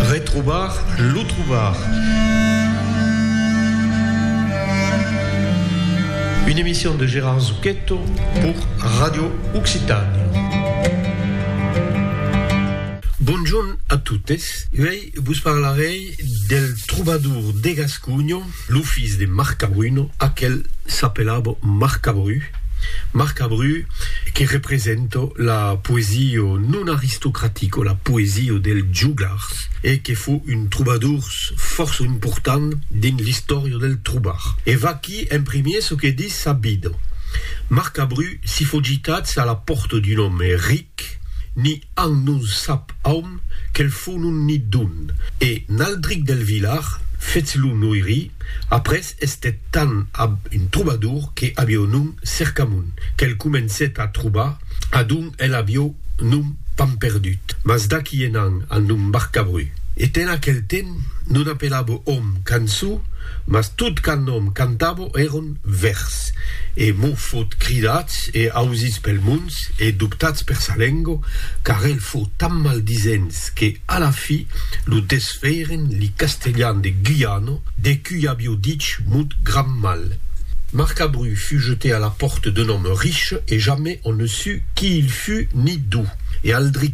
Retrobar lo trobar. Une emission de Gérard Zucchetto pour Radio Occitània. Bonjorn a totes. Uèi vos parlarèi del trobador de Gasconha. Lo fils de Marcabruno, aquel s'apelava Marcabru, Marcabru que representa la poesia non aristocratica, la poesia dels jogars e que fo un trobadors fòrça important dins l'istòria del trobar. E vaquí en primier çò que ditz sa vida, Marcabru si fo gitats a la pòrta d'un òme ric, ni An non sap aun quel fon on n'i don. E Naldric del Vilar, fetz lo noiri, après estet tan ab un trobador que avió nom Cercamon, quel comencet a trobar, a don el avió nom Pamperdut, mas d'aqui enant al nom Marcabru. E ten aquel temps non apelabo òm cançó, mas tot qu'an òm cantabo eron vèrs. E mos fot cridats e ausits pel mond. Dubs e dubtats per sa lengo, car el fou tan maldisents que, a la fi, lo desfèiren li castelhan de Guyano, de cui avió dich mut gran mal. Marcabru fut jeté a la pòrte d'un òme riche e jamai on ne sut qui il fut ni d'ou e al dri.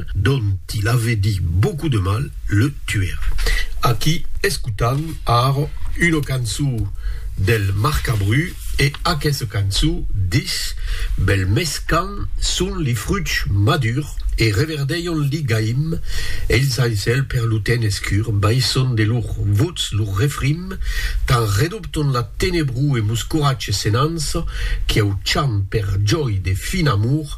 dont il ave dit beaucoup de mal, le tuer. Aquí escotam ara una cançó del Marcabru e aquessa cançó dich, Bel mes quand son li fruchs madurs e reverdèion li gaim, eils al cèl per lo temps escur baisson de lor votz lo refrim, tan redobton la tenebró e mos coratge senança, quiau chant per jòi de fin amor,